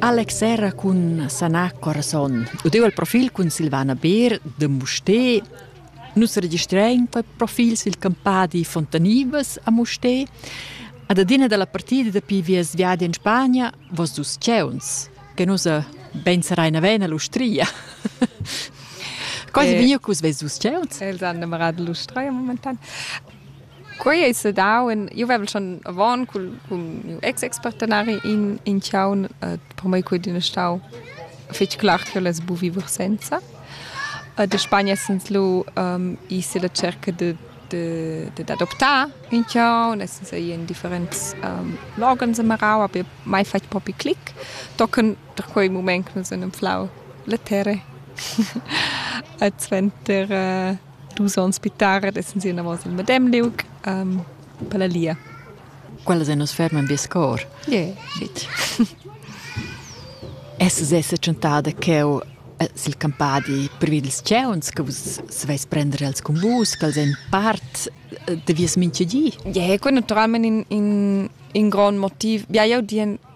Alex era cun sanar corazon. Udeu il profil cun Silvana Beer de Musté. Nus registrain per profils il campadi Fontanibas a Musté. Ad adina dalla partida dapi vies viadi in Spagna, vos dus ceuns, che nus ben sarein avena l'ustria. Cosa eh, via cus ves dus ceuns? Els han innamorato l'ustria momentan. Quei ei sedau in, jeu vevel schon avon cul, cun miu ex-expartenari in, in tgaun, eh, per mei quei din stau fetg clar ch'el es buc viver senza. Eh, da Spagna essens lu ehm, i's illa cerca de, de, dad adoptar ün tgaun, essens ei in differents ehm, loghens amarau, aber mai fatg propi clic. Tocan da quei mument che nus han anflau la terra. E suenter eh, dus ons pitar ed essan si enavos il medem liug um, per la lia. Quella se nus ferman vies cor. Yeah. Shit. Es se tschentada cheu eh, sil campadi privi dils ceuns che vus sveis prendere als cumbus, che els ein part eh, de vies minchegi? Ja, yeah, quel naturalment in, in, in grond motiv. Ja, io dien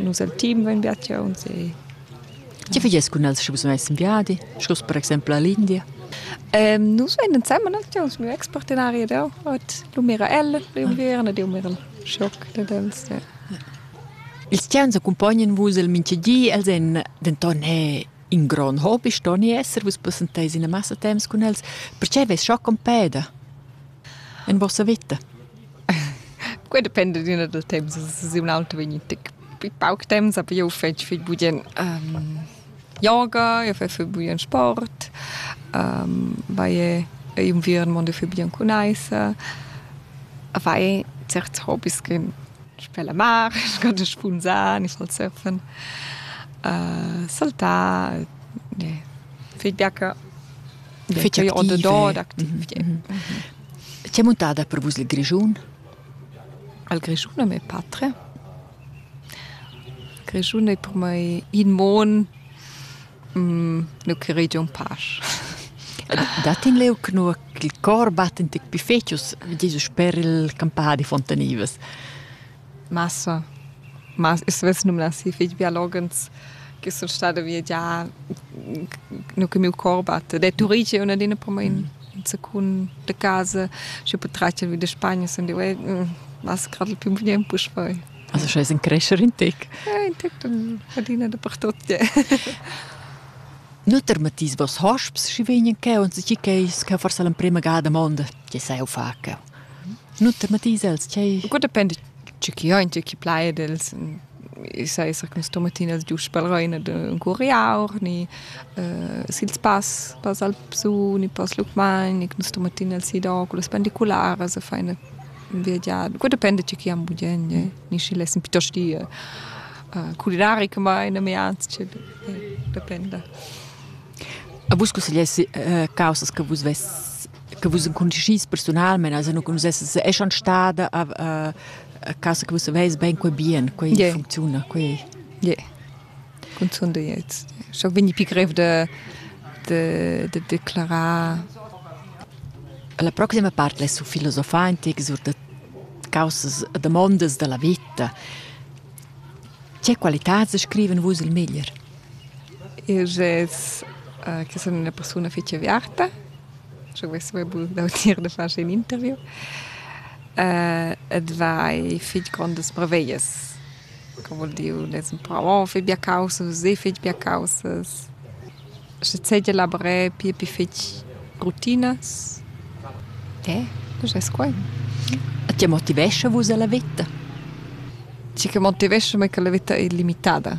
Nus el team vein biatiuns e Tge fagias cun els sche vus veis in viadi, sco per exempel all'India? Ähm, nus vein ensemen actuuns miu ex-partenari ed eu. Ot lu mira el priu viern ed eu mir il schoc dad els. Ja. Ils tiauns accumpognan vus el mintga di, els èn denton è in grond hobby, stoni esser, vus passenteis ina massa temps cun els. Perche veis schoc en peda? En vossa vita? Quei dependa d'üna dal temps, es ün auter vegni tic pi pauc temps, aber io fetsch fich bugien yoga, io fetsch fich bugien sport, vaie inviern mondo fich bugien cun aissa, a fai certs hobis ch'en sper la mar, sco spunzar, gnifal surfen, saltar, fich biaca. Fich activ. Ot da dad activ, ie. Tg'è muntada per vus il Grischun? Il Grischun è mia patria. Il Grischun è per mai in mon, nu currì giò ün pasch. Dat in leu che nua ch'il cor batten tic pi fetg, Jesus sper il campadi Fontanivas. Massa. Mas eu savess numnar schi fich biologens che sun stada viagià no cun mieu cor batta. Ed è Turige üna d'ina po main in secund da casa. Schi po tratgel vi da Spagna sun dieu e massa gradel pü bgnieu puspei. Also scha es in crescher in tec. Ja, in tec dann adina dapertot, ja. Nuter Matthias, was hast du, schi vegnan che und si che es che forse l'emprima gada mondo che sai ho fa che? nu tematis els tgei Gut depend tge chi hain tge chi plaid els i sa esser quist tomatin els giusch pel rain ed ün curiaur ni uh, sils pass pass Alpsu ni pass Lucmagn ni quist tomatin els si da culas pendicularas e faina viagiar gut depend tge chi am budien ni schi lessen piuttost dir uh, culinari che mai na me ans dependa A vus cussegliessi eh, causas che vus vess che vus enconuscis personalmente, also non conoscesses, è schon stada a, a, a casa che vus aveis ben quei bien, quei yeah. funziona, quei. Yeah. Consondo jetzt. Schon wenn ich begriff de de de declarar La prossima parte è su filosofare antiche sur de causas demandas della vita. Che qualità scriven vus il meglier? Eu gess che sun üna persuna fich aviarta. Schi vess be bun d'audir da far schi ün interview. ed vai fich grondas preveglias. Co voul dir ün es ün pravo, fai bia caussas, seh fich bia caussas. Schi d'segia lavré pia pi fich rutinas. Eh, nu gess quai. E tge motivescha vus a la vita? Tgi che motivescha mei che la vita ei limitada.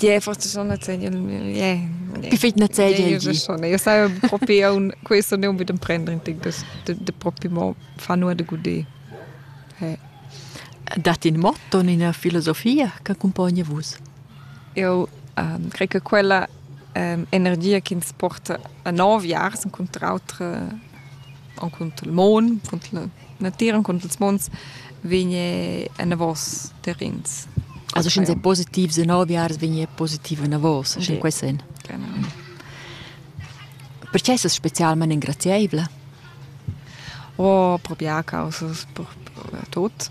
Ie, forse schon nezegia, ie. Perfetg nezegia il di. schon. Io sai propi aunc, questo ne unbedingt prendere in tec das, de, de propi mo fa nur de guder. He. Dat in motto, ina filosofia che accompagna vus? Eu um, crei che quella um, energia che ins porta a nov jars, incontra autre Encunter il mon, cunter la natira, encunter ils mons vegn enavos terrens. Also sche sei positiv se nove jahres vegn positiv enavos, sche quei sen. Genau. Perché sei specialmente ingraziabile? Oh, proprio a causa per, per tutto.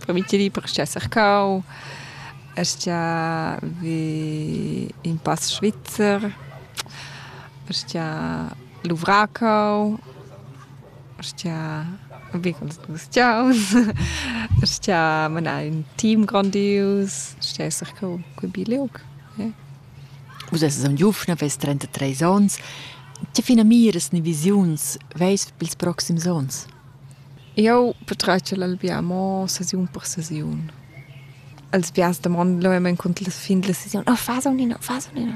per mi ti perché esser cau. Estia vi in pass svizzer. Estia luvracau, stia vegls gustiaus, stia manar ün team grondius, stia esser co quei bi liug. Eh. Vus esses am giufna, veis 33 ons. Tge finamiras ni visiuns veis pils proxims ons? Eu patratgel albia mo sesiun per sesiun. Els biars domand lo emen cont la fin della sesione, oh, fas o nin, fas o nin.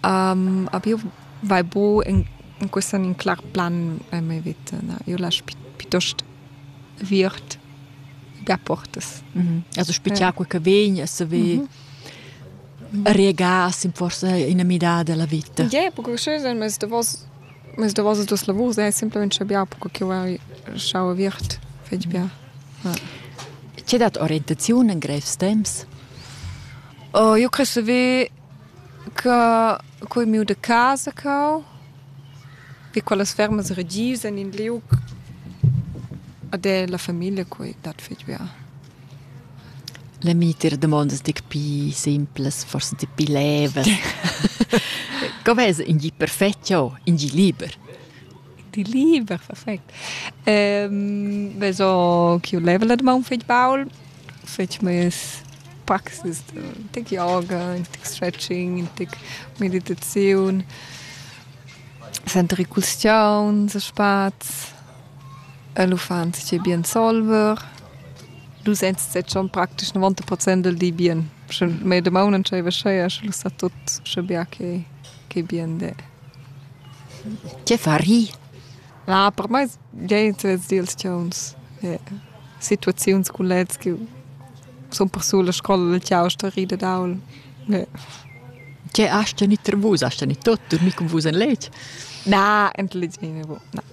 Aber io vai bu in in quist an in clar plan e ma vita na. Io lasch pi piitost viert be portas. Also spichar quai che vegn e se ve regas in forsa ina midada della vita. Ie, perché sche sen mes davos mes davos duos lavurs è semplament scha bia perché ch'io vai schau viert fetg bia. C'è dat orientaziun in grevs temps? Io cre se ve Ca cun miu da casa cau, vi quellas fermas regius en in liug ed è la famiglia quei dat fetg bia. La mita damondas ti pli simplas, forsa ti pli levas. Co vesa in gi perfetg jau, in gi liber? Di liber, perfect. Ehm, vezo chiu level ad maun fetg baul, fetg mes praxis da tic yoga, in tic stretching, in tic meditaziun, sentiri custiaun, se spaz, el uffant schi bien solver. Du sents set schon praktisch 90 Prozent del di bien. Sche medemaun entscheiva scheia, sche lu sa tut sche bia che, che bien de. Tge far hi? Na, per mei geniturs dils tgauns, situaziuns cun leds che sun persul a scola dal tgau sto rir dad aul. Tge has tegnì vus? Has tegnì tot, durmì cun vus en letg? Na, intelligent.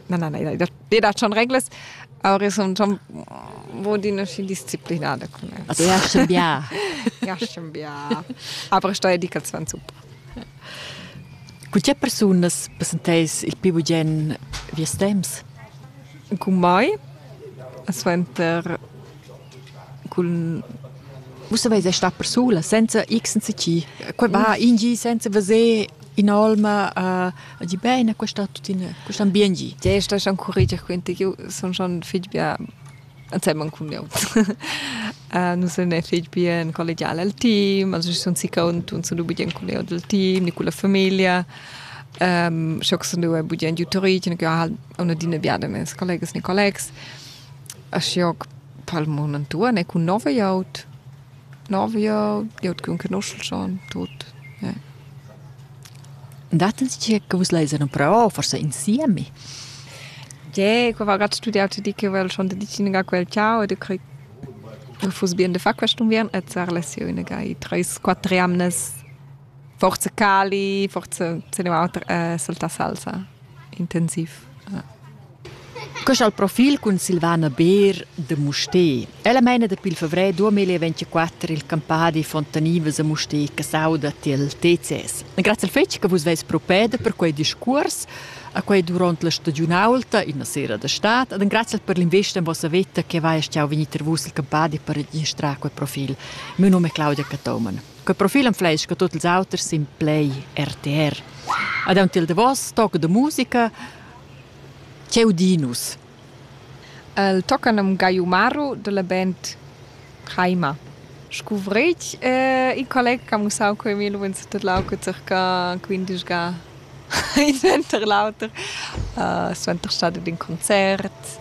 Na, na, na, i dat schon reglas, aber ich sun schon adina schi disciplinada cun els. Also, ja, schon bia. Ja, schon bia. Aber sto dedicaziun super. Cu tge persunas passenteis il pi bugen vies temps? Cun mai, suenter cun Vus saveis è star persula senza x senza c. Quei va in gi senza veser in'olma uh, di bene, questo tuttina, questo ambient. Ti stai schon curriger, quindi io sono schon figlia ensemen cun eu. uh, nus sun e fich bien collegial al team, also sun si cont und sun bugien cun eu dal team, ni cun la famiglia. Um, scho sun eu bugien giutorich, ja halt una dina biada mes collegas ni collegs. A scho palmon antuan e cun nove aut. L'avia glieud ch'ün conoschel schon tuot, ja. Datt'ns tgei che vus leis en però, forsa insieme? Tgei, qua va grad studiau ti di che vel schon de dicina quel ciao e de crei che fuss bien de far quest unviern e zar less jeu inaga i treis, quatter jamnas Forza Cali, forza se ne auter eh, saltar salsa intensiv. Ja. Quest al profil cun Silvana Beer de Musté. Ella meina dapi il fevrè 2024 il campà di Fontanivas a Musté che sauda til TCS. Grazie al fetg che vus veis propeda per quei discurs a quei durant la stagiunaulta in sera da stat ed grazie per l'investa in vossa vetta che vai a stiau venir vus il campà di per registrare quel profil. Mio nome è Claudia Catoman. Quei profil enfleischa tut ils auters sin play RTR. Ad aunc il davos toc de musica Cheu Dinus. El tocca num Gaiumaru della band Caima. Scuvreig eh, il collega che ha mussau quei mi lu tut lauco circa 15 ga in center l'auter. Uh, suenter stade d'un concert.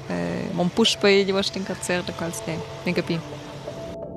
Eh, mon puspei gli vostra in concert da quals ne, ne capi.